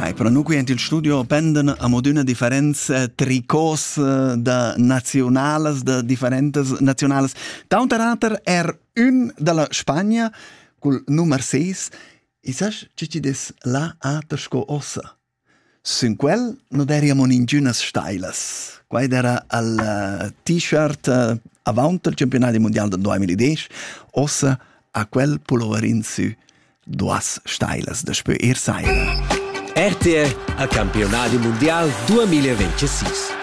Hai, però nu qui il studio pendan amodüna differents eh, tricos eh, da nazionalas, da differentas nazionalas. Tauter ater er ün dalla Spagna cul nummer 6. I sas chi ci des la ater sco ossa? Sün quel nu deríamos ingünas stailas. Quai d'eira al t-shirt avaunt al campiunadi mundial dal duamillidesch. Ossa ha quel puloverin sü duas stailas daspö ir saira. RTR a Campionadi mundial 2026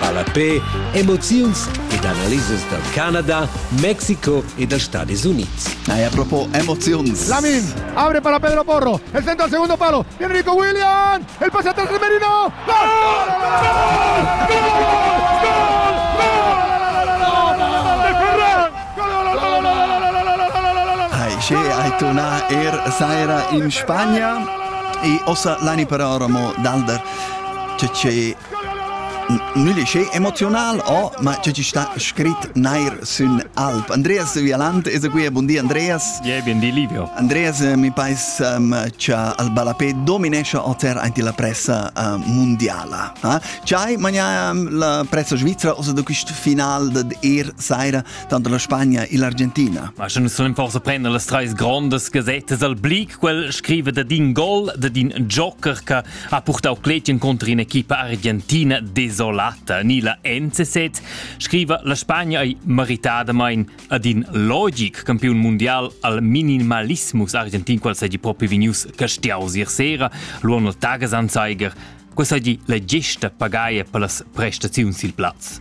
Ballapé, emoziuns ed analisas dal Canada, Mexico e da Stadis Unids. Eh, a propos emoziuns. Lamin abre para Pedro Porro. El centro al segundo palo. Viene Nico Williams. El pase atrás de Merino. ¡Gol! ¡Gol! che hai tornà er saira in Spagna e ossa l'anni per ora mo d'alder che che Mülich è emozional, oh, ma tge ti sta scrit neir sün alp. Andreas Vialant es qui, bun di Andreas. Yeah, bun di Livio. Andreas, eh, mi pais um, cha al balapè dominesce oter anti la pressa uh, mondiala. Eh? C'hai magna um, la pressa svizzera osa da quist final dad er saira tanto la Spagna e l'Argentina? Ma schon sollen forse prendere le treis grandes gazettes al blick, quel scrive da din gol, da din joker che ha purtau clet encunter in'equipa argentina desolata ni la NCZ, scriva la Spagna ei meritadamein ad in logic campiun mundial al minimalismus argentin qual seigi propi vegnius castiaus ier sera, luon il Tagesanzeiger. Questa è la gesta pagaia per las prestazioni sil plaz.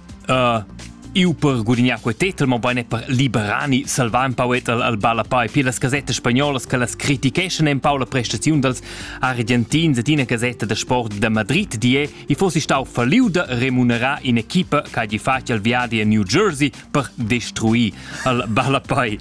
Uh, eu per gudignar quei tetel, mobein e per liberani salvar un pau al, al ballapai. Pir las gasettas spagnolas che las criticheschan un pau la prestaziun dals argentins et ina gasetta da sport da Madrid di è, i fossi stau falliu da remunerar in equipa che hagi fatg al viadi a New Jersey per destruir al ballapai.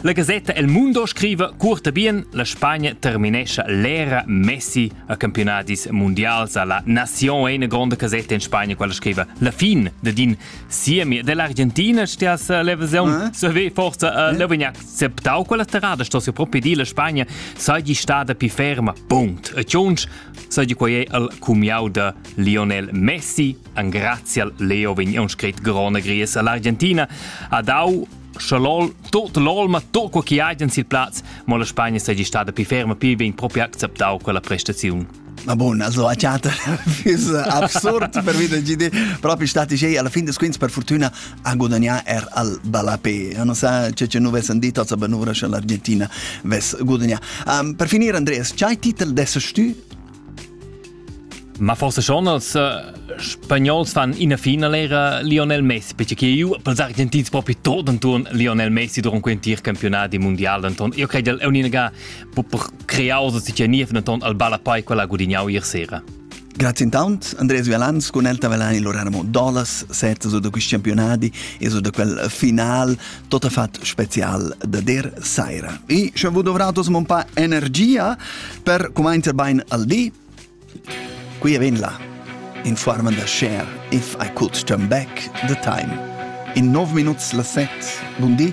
La gasetta El Mundo scrive, curta bien, la Spagna terminescia l'era Messi a campionadis mundials a la Nation è una grande casetta in Spagna quella scrive la fin de din siemi dell'Argentina stias l'evasione se ve forse l'avevano acceptado quella strada sto si proprio di la Spagna sei stata più ferma punct e ciunch sai di quai è il cumiau de Lionel Messi an grazie Leo vegn un scrit grone gries all'Argentina ad au Scha lol, tot l'olma, tot quo chi hajan sil plaz, mo la Spagna seigi stada pi ferma, pi ben propi acceptau quella prestaziun. Ma bon, also a teater is absurd per vida GD, propi stati sei alla fin des quins per fortuna a guadagnare er al Balapé. Non sa c'è c'è nuve san dito, aber nuvra scha l'Argentina ves gudagnare. Um, per finire Andreas, c'hai titel des tu? Ma forse schon als äh, Spagnols fan in fina lera Lionel Messi, perché io pels Argentins proprio tot anton Lionel Messi durant quel tir campionat di mondial anton. Io credo è un'unica per creosa si niev anton al balla poi quella gudignau ier sera. Grazie intanto Andrea Vialans con Elta Velani Lorena Mondolas, sette su da questi campionati e su da quel final tot fat special da der saira. E sche vous dovrà tos mon pa energia per commencer bain al di, qui vin la in forma da share if I could turn back the time. In 9 minuts la set. Buondì.